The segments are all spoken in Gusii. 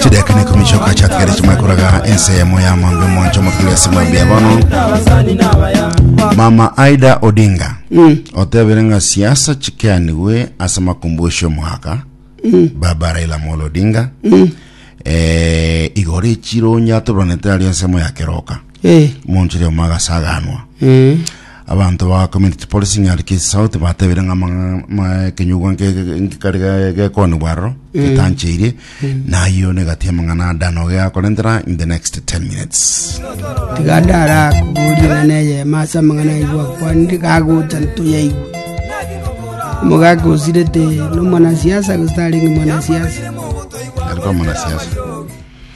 chideka na ikumi chioka chiatigare chimwe koraga ense yamo ya mambe moncho mokire ase mambe ya bono mama aida odinga otebire ng'a siasa chikeanigwe ase makumbushi omwaka baba raila molo odinga eh, igoro echiro nyatobanete ari ensemo ya keroka Eh. Omonto oria omo agasaganwa. Eh. Abanto ba Community Policing Nyarukizi South batebire ng'a amang'a- ma- ekenyugwa nke- nkekari ge- gekoonigwa aroro getancheirie nayio negati amang'ana adano geakorentera in the next 10 minutes tiga ndara kuburia ng'ana eye masa mang'ana igwa kwandi gagocha ntoyaigwe omogaka osirete nomwanasiasa gose tarenge mwanasiasa ariko amanasiasa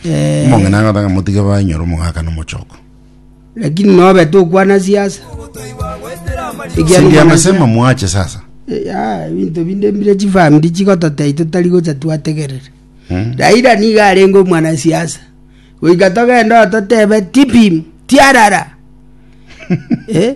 Eh, Omong'ina agotaka ng'a motige bainyore omogaka na omochoko. lakini nobe tokwana siasa Ekiagera Sindia mwana- amesema mwache sasa. Eh, ya, ebinto binde mbire chifamiri chigototei totari gocha twategerere Mm. raira niga arenge omwanasiasa goika togenda ototebe tipim tiarara Eh,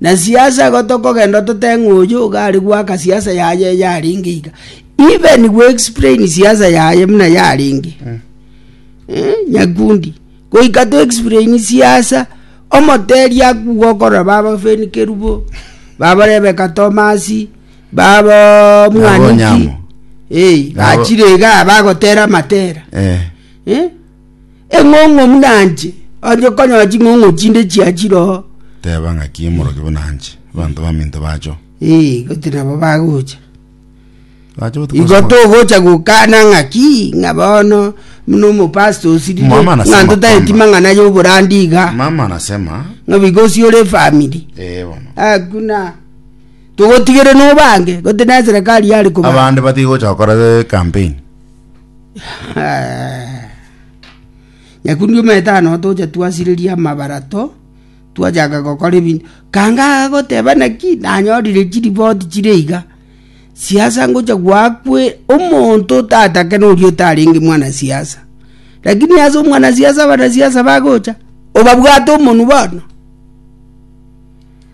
Na siasa igo tokogenda ototeng'a oyio iga are goaka siasa yaye yarenge iga. Even we explain siasa yaye muna yarenge. Eh, nyakundi. Goika to explain siasa, omoteri akuga okorora baba Feni Kerubo, baba Rebeka Tomasi, baba Nabo Mwaniki. Onyamo. Eh, Nabo- gachire iga bagotera matera. Eh. Eh? Eng'ong'o buna anche. Onye konyora ching'ong'o chinde chia chiroho. Teba ng'aki omoroki buna anche. Abanto baminto bacho. Eh, goti nabo bagocha. Bacho botuko Igo togocha gokana ng'aki ng'a bono buna omopasta osirire. Mama anasema Ng'a ntotaeti kwamba. mang'ana y'oborandi iga. Mama anasema Ng'a bigosi ore efamiri. eh bono. Hakuna. Togotigere nobange. Goti na serikali yare kobanga. Abande batigocha gokora eh, campaign. Nyakundi omanyete aye notocha twasireria amabarato, twachaka gokora ebinto. Kanga agagoteba naki, nanyorire chiripoti chire iga, siasa ngocha gwakwe, omonto otatake noria otarenge mwanasiasa. Lakini ase omwanasiasa abanasiasa bagocha, obabwate omonwe bono.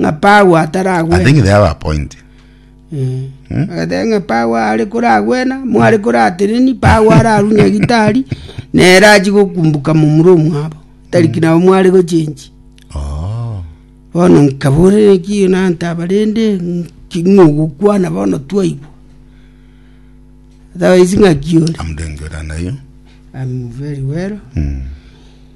ng'a Paulo I ataragwena. think they have a point. Mm. Agateba ng'a Paulo are koragwena, mware korateneni, Paulo ararwe nyagitari, nere achi gokumbuka momura omwabo. Tariki nabo mware gochenji. Oh. Bono nkaborera ekiyo nanta abarende, ng'ogokwana bono twaigwa. Otherwise ng'aki ore. I'm doing good and are you? I'm very well. Mm.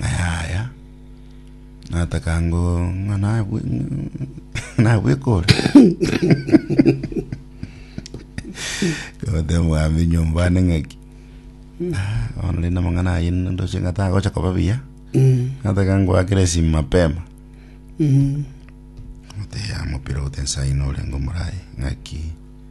Yaya, nataka ngo ng'a nabwe nabwekore kote mwami nyomba ane ng'aki Ah, bono rende amang'ana aye ndoche ng'a tagocha koba buya nataka ngoakere esimu mapema oteya mopira ote nsaino orenge omoraye ng'aki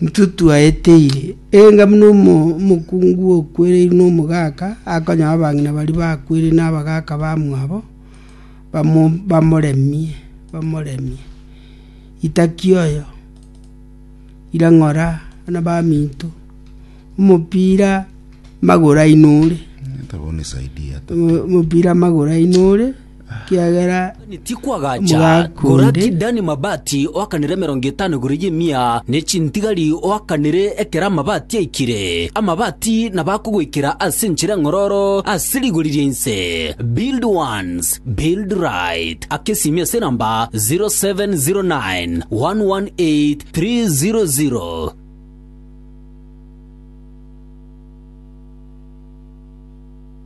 Intwe twaeteire, enga buna omokungu okwereirwe nomogaka akonyora abang'ina baria bakwereirwe nabagaka bamwabo, bamoremie, bamoremie. Itaki oyo, ira ng'ora buna baminto, omopira magoro aino ore, omopira magoro aino ore. ekiagera tikwagacha koraki Dani mabati oakanire emerongo etano igoro y'emia, ne chintigari oakanire ekero amabati aikire. Amabati nabo akogoikera ase enchera eng'ororo ase rigori ria inse. Build once, build right. Aka esiimi ase enamba 0709 118 300.